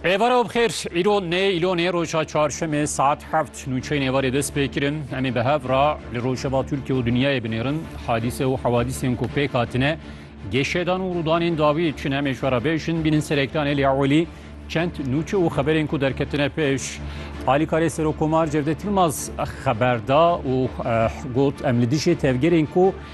Êvara bixêr, îro nê îlonê roja çarşemê saet heft nûçeyên êvarê dest pê kirin. Em ê bi hev ra li rojeva Tirkiye û dinyayê binêrin. Hadîse û hewadîsên ku pêk hatine, gêşedan û rûdanên dawî çi ne em ê ji we re bêjin. Bînin serêktanê lê ewelî çend nûçe û xeberên ku derketine pêş. Alîkarê Serokkomar Cevdet Yilmaz xeber da û got em li dijî tevgerên ku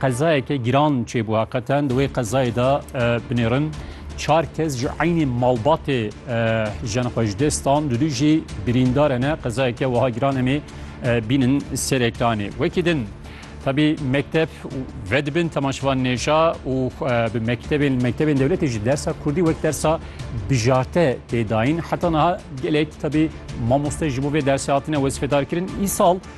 Qezayeke giran çêbû heqeten di wê qezayê de binêrin çar kes ji eynî malbatê jin xwe ji dest dan du jî birîndare ne qezayeke wiha giran em ê bînin serekanê wekî din. Tabi mekteb ve dibin temaşivan nêja û bi mektebên mektebên dewletê ji dersa Kurdî wek dersa bijarte têdayîn heta niha gelek tabi mamoste ji bo vê dersê hatine wezfedar kirin îsal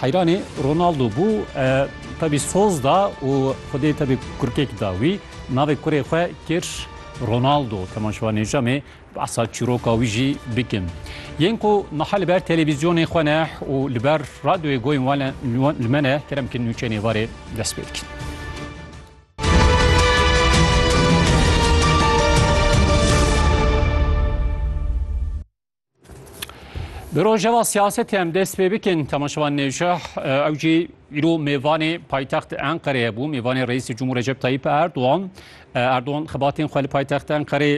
Heyranê Ronaldo bû tevî soz da û xwedê tevî kurkek da wî. Navê kurê xwe kir Ronaldo. Temaşevan Nêcamê behsa çîroka wî jî bikin. Yên ku niha li ber televîzyonê xwe ne û li ber radyoyê goyên wan li me ne kerem bikin nûçeyên êvarê dest pê dikin. Bi rojeva siyasetê em dest pê bikin temaşevan nêjah ew jî îro mêvanê paytext Enqereyê bû mêvanê Reîsê Cumhur Recep Tayyip Erdoğan Erdoğan xebatên xwe li paytext Enqerê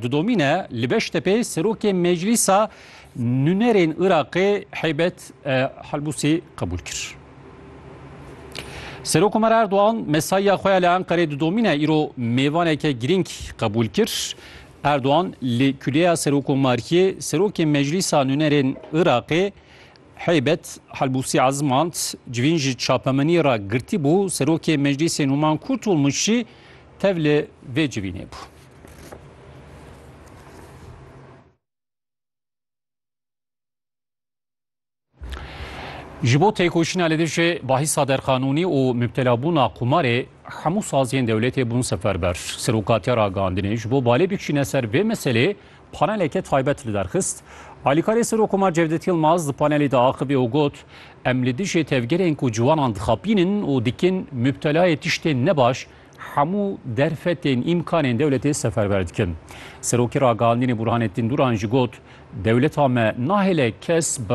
didomîne li Beştepê serokê meclîsa nûnerên Iraqê Heybet Helbûsî qebûl kir. Serok Omer Erdoğan mesaiya xwe ya li Enqerê didomîne îro mêvaneke girîng qebûl kir. Erdogan li Kuleya Serokomariyê Serokê Meclîsa Nûnerên Iraqê Heybet Helbûsî ezmand, civîn ji çapemeniyê re girtîbû, Serokê Meclîsê Nûman Kurtulmuş jî tevli vê civînê bû. Ji bo têkoşîna li dijî bahîsa derqanûnî û mubtelabûna qumarê hemû saziyên dewletê bûn seferber. Serokatiya Ragandinê ji bo balê bikişîne ser vê meselê paneleke taybet li derxist. Alîkarê Serokkomar Cevdet Yilmaz di panelê de axivî û got, Em li dijî tevgerên ku ciwanan dixapînin û dikin mubtelayê tiştên nebaş hemû derfetên îmkanên dewletê seferber dikin. Serokê Ragandinê Burhanettin Duran jî got, Dewleta me nahêle kes bi